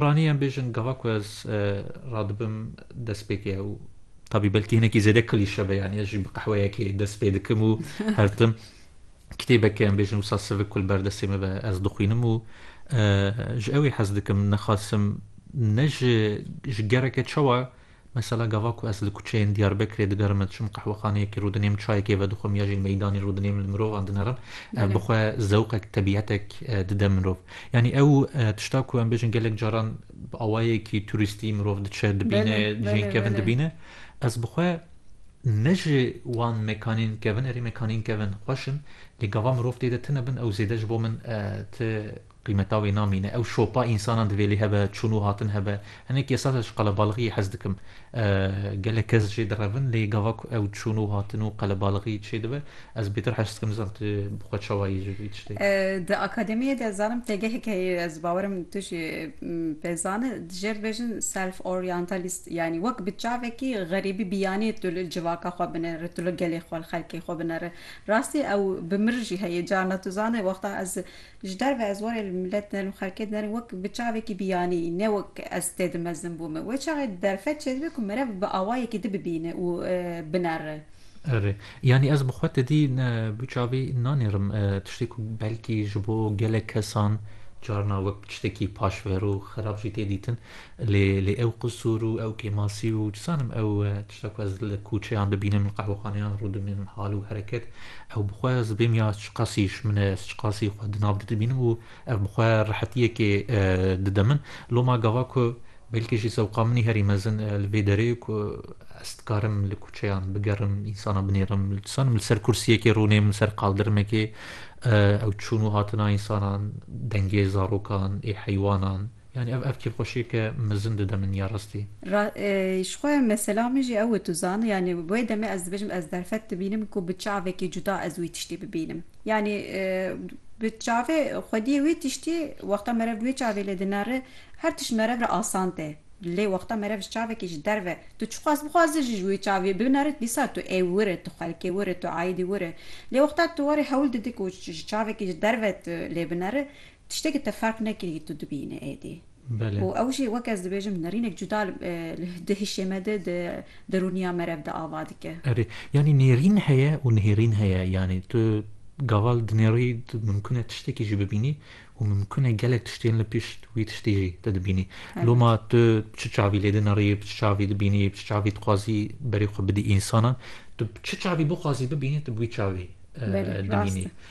Ranî em bêjin gava ku ez radibim destpêkê ew tabî belkî hinekî zêde klîşe be yanî ez jî bi qehweyekê dest pê dikim û hertim kitêbeke em bêjin wisa sivik ku li ber destê me be ez dixwînim û ji ewê hez dikim nexasim ne ji ji gereke çawa Mesela gava ku ez li kuçeyên Diyarbekirê digerime diçim qehwexaneyekê rûdinêm çayekê vedixwim ya jî meydanê rûdinêm li mirovan dinerim ev bi xwe zewqek tebiyetek dide mirov. Yanî ew tişta ku em bêjin gelek caran bi awayekî turîstî mirov diçe dibîne cihên kevin dibîne ez bi xwe ne ji wan mekanên kevin erê mekanên kevin xweş in lê gava mirov tê de tune bin ew zêde ji bo min ti Qîmeta wê namîne. Ew şopa însanan divê lê hebe, çûn û hatin hebe. Hinekî esas ez ji qelebalixiyê hez dikim. Gelek kes jê direvin lê gava ku ew çûn û hatin û qelebalixiyê çê dibe, ez bêtir hez dikim nizanîm tu bi xwe çawa yî ji vî tiştê. Di akademiyê de zanim têgehek heye, ez bawer im tu jî pê zan î, dijê dibêjin self-orientalist yanî wek bi çavekî xerîbî biyanî tu li civaka xwe binêri, tu li gelê xwe, li xelkê xwe binêri. Rastî ew bi mir jî heye, carna tu zanî wexta ez Ji derve ez warê li milet dinerim, li xelkê dinerim wek bi çavekî biyanî ne wek ez tê dimezim bo min. Wê çavê derfet çêdibe ku merev bi awayekî di bibîne û binere. Erê. Yanî ez bi xwe tedî bi çavî nanêrim. Tiştê ku belkî ji bo gelek kesan carna wek bi tiştekî paşver û xerab jî tê dîtin. Lê lê ew qisûr û ew kêmasî û çi zanim ew Tişta ku ez li kûçeyan bibînim, li qehwexaneyan rûdibînim hal û hereket, ew bi xwe ez bêm ya çiqasî ji min e, ez çiqasî xwe di nav de dibînim û ev bi xwe rehetiyekê dide min. Loma gava ku belkî jî zewqa min herî mezin e li vê derê ku ez dikarim li kûçeyan bigerim, însanan binêrim, li dizanim li ser kursiyekê rûnêm, li ser qaldirimekê, ew çûn û hatina însanan, dengê zarokan, ê heywanan, Yanî ev ev kêfxweşiyeke mezin dide min ya rastî. Ra ji xwe mesela min jî ew e tu zan yanî wê demê ez dibêjim ez derfet dibînim ku bi çavekî cuda ez wî tiştî bibînim. Yanî bi çavê xwediyê wê tiştî wexta merev bi wê çavê lê dinare her tişt merev re asan tê. Lê wexta merev ji çavekî ji derve tu çixwaz bixwaze jî ji wê çavê binare dîsa tu ê wir e tu xelkê wir e tu aîdî wir e. Lê wexta tu warê hewl didî ku ji çavekî ji derve tu lê binare Tiştekî te ferq nekirî tu dibînî êdî. Belê. Û ew jî wek ez dibêjim nirînek cuda di hişê me de, di derûniya me re de ava dike. Erê. Yanî nêrîn heye û nihêrîn heye. Yanî tu gava li dinêrî tu mimkun e tiştekî jî bibînî û mimkun e gelek tiştên li pişt wî tiştî jî te dibînî. Loma tu bi çi çavî lê dinirî, bi çi çavî dibînî, bi çi çavî dixwazî berê xwe bidî însanan, tu bi çi çavî bixwazî bibînî tu bi wî çavî dibînî.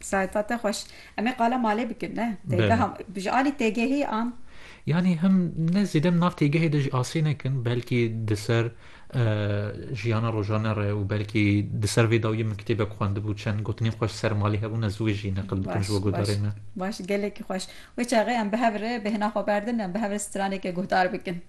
Saeta te xweş. Em ê qala malê bikin ne? Têgeha ji alî têgehê an. Yanî him ne zêde nav têgehê de ji asê nekin belkî di ser jiyana rojane re û belkî di ser vê dawiyê min kitêbek xwendibû çend gotinên xweş ser malê hebû ne ziwê jî neqil bikin ji bo guhdarê me. Baş gelekî xweş. Wê çaxê em bi hev re bêhna xwe berdin em bi hev re straneke guhdar bikin.